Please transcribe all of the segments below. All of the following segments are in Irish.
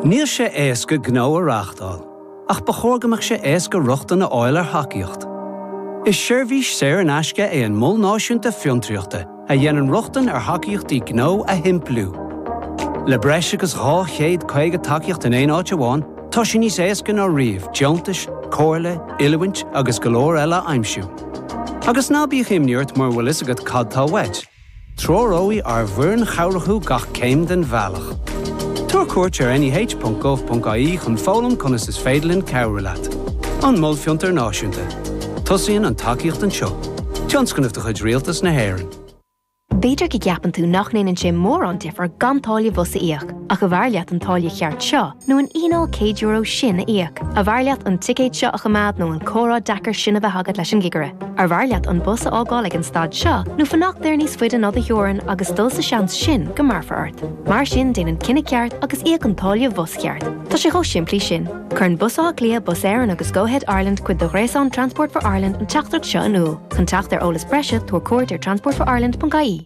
Níl sé éasca gnó a reáchtáil, ach ba chóir go mbeadh sé éasca rochtain a fháil ar thacaíocht. Is seirbhís saor in aisce é an Mol Náisiúnta Fiontraíochta a dhéanann rochtain ar thacaíochtaí gnó a shimpliú. Le breis agus 250 tacaíocht in aon áit amháin, tá sé níos éasca ná riamh deontais, comhairle, oiliúint agus go leor eile a aimsiú. Agus ná bíodh imní ort mura bhfuil a fhios agat cad tá uait, Treoróidh ár bhfoireann chabhrach thú gach céim den bhealach. Tabhair cuairt ar neh.gov.ie chun foghlaim conas is féidir linn cabhrú leat. An Mol Fiontair Náisiúnta. Tosaíonn an tacaíocht anseo. Tionscnamh de chuid Rialtas na hÉireann. B'fhéidir go gceapann tú nach ndéanann sé mórán difear gan táille bhus a íoc, ach arbh fhearr leat an táille cheart seo, nó an fhíneáil céad euro sin a íoc, arbh fhearr leat an ticéad seo a choimeád nó an comhrá deacair sin a bheith agat leis an gcigire, arbh fhearr leat an bus a fhágáil ag an stad seo nó fanacht air níos faide ná do theorainn agus dul sa seans sin go mbéarfar ort. Mar sin déan an cinneadh ceart agus íoc an táille bhus cheart. Tá sé chomh simplí sin. Cuireann Bus Átha Cliath, Bus Éireann agus Go-Ahead Ireland cuid de ghréasán Transport for Ireland an teachtaireacht seo in iúl. Chun teacht ar eolas breise, tabhair cuairt ar transportforireland.ie.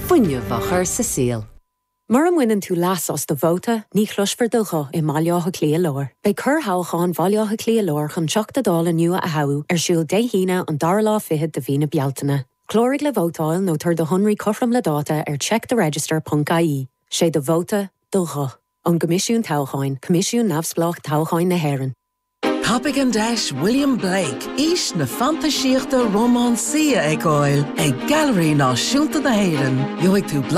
fuinneamh a chur sa saol. Mura mbaineann tú leas as do vóta, ní chloisfear do ghuth i mBaile Átha Cliath Láir. Beidh corrthoghchán Bhaile Átha Cliath Láir chun Teachta Dála nua a thoghadh ar siúl Dé hAoine an dara lá fichead de mhí na Bealtaine. Cláraigh le vótáil nó tabhair do shonraí cothrom le dáta ar checktheregister.ie. 'Sé do vóta, do ghuth. Ón gCoimisiún Toghcháin, Coimisiún neamhspleách toghcháin na hÉireann. Tapaigh an deis William Blake, Aois na Fantaisíochta Rómánsaí a fheiceáil ag Gailearaí Náisiúnta na hÉireann. Gheobhaidh tú blaiseadh.